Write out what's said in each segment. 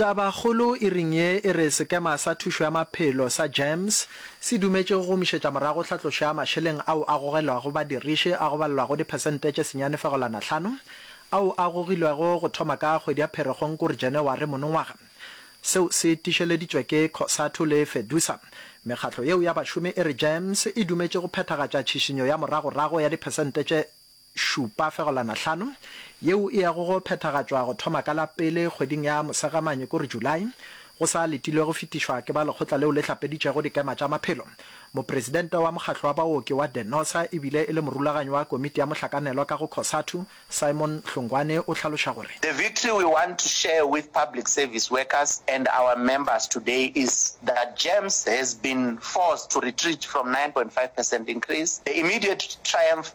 Tabakgolo e ring ye e re Sekema sa Thušo ya Maphelo sa GEMS se dumetše go gomišetša morago tlhatlošo ya mašeleng ao a gogelwago badiriši a go balelwago diphesente tše senyane fegolwana hlano ao a gogilwego go thoma ka kgwedi ya Pherekgong kore Janaware monongwaga. Seo se tišeleditšwe ke Cosatu le Fedusa. Mekgatlo yeo ya bašomi e re GEMS e dumetše go phethagatša tšhišinyo ya moragorago ya diphesente tše Šupa fegolwana hlano, yeo e yago go phethagatšwa go thoma ka la pele kgweding ya Mosegamanye, ko re July, go sa letilwe go fetišwa ke ba lekgotla leo le hlapeditšego dikema tša maphelo. Mopresidente wa Mokgatlo wa Baoki wa Denosa e bile e le morulaganyi wa komiti ya mohlakanelwa ka go Cosatu, Simon Hlongwane o hlaloša gore. The victory we want to share with public service workers and our members today is that GEMS has been forced to retreat from nine point five percent increase. The immediate triumph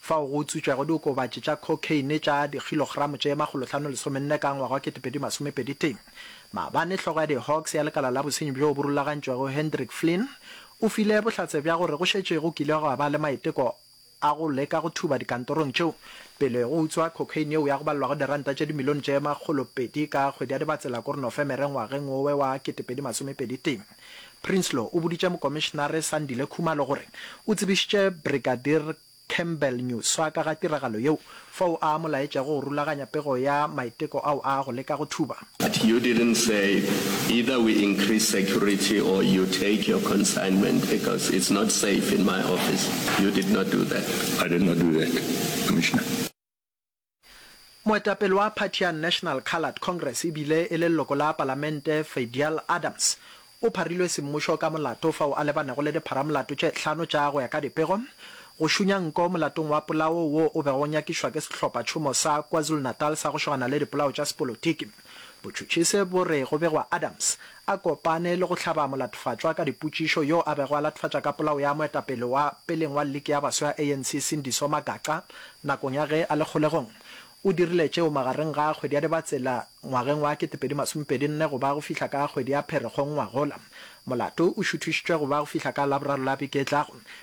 fao go utswitšwego diokobatši tša cocaine tša dikgilogramo tše makgolohlano lesomenne ka ngwaga wa ketepedi masome pedi tee. Maabane hlogo ya di-Hawks ya lekala la bosenyi bjoo bo rulagantšwego Hendrik Flynn o file bohlatse bja gore go šetše go kile gwa ba le maiteko a go leka go thuba dikantorong tšeo pele go utswa cocaine yeo ya go balelwago diranta tše dimilione tše makgolopedi ka kgwedi ya Dibatsela kore Nofemere ngwageng wowe wa ketepedi masome pedi tee. Prinsloo o boditše Mokomišenare Sandile Khumalo gore o tsebišitše Brigadier Campbell Nyuswa ka ga tiragalo yeo, fao a mo laetšego go rulaganya pego ya maiteko ao a go leka go thuba. But you didn't say either we increase security or you take your consignment because it's not safe in my office. You did not do that. I did not do that, Commissioner. Moetapele wa phathi ya National Coloured Congress e bile e le leloko la palamente Fadial Adams o pharilwe semmušo ka molato fao a lebanego le dipharamolato tše hlano tša go ya ka dipego go šunya nko molatong wa polao wo o bego o nyakišwa ke sehlophatšhomo sa KwaZulu-Natal sa go šogana le dipolao tša sepolotiki. Botšhotšhise bo re go begwa Adams a kopane le go hlaba molatofatšwa ka dipotšišo yo a bego a latofatša ka polao ya moetapele wa peleng wa liki ya baswa ya ANC Sindiso Magaqa nakong ya ge a le kgolegong. O dirile tšeo magareng ga kgwedi ya Dibatsela ngwageng wa ketepedi masomepedi nne go ba go fihla ka kgwedi ya Pherekgong ngwagola. Molato o šuthišitšwe go ba go fihla ka Laboraro la beke e tlago.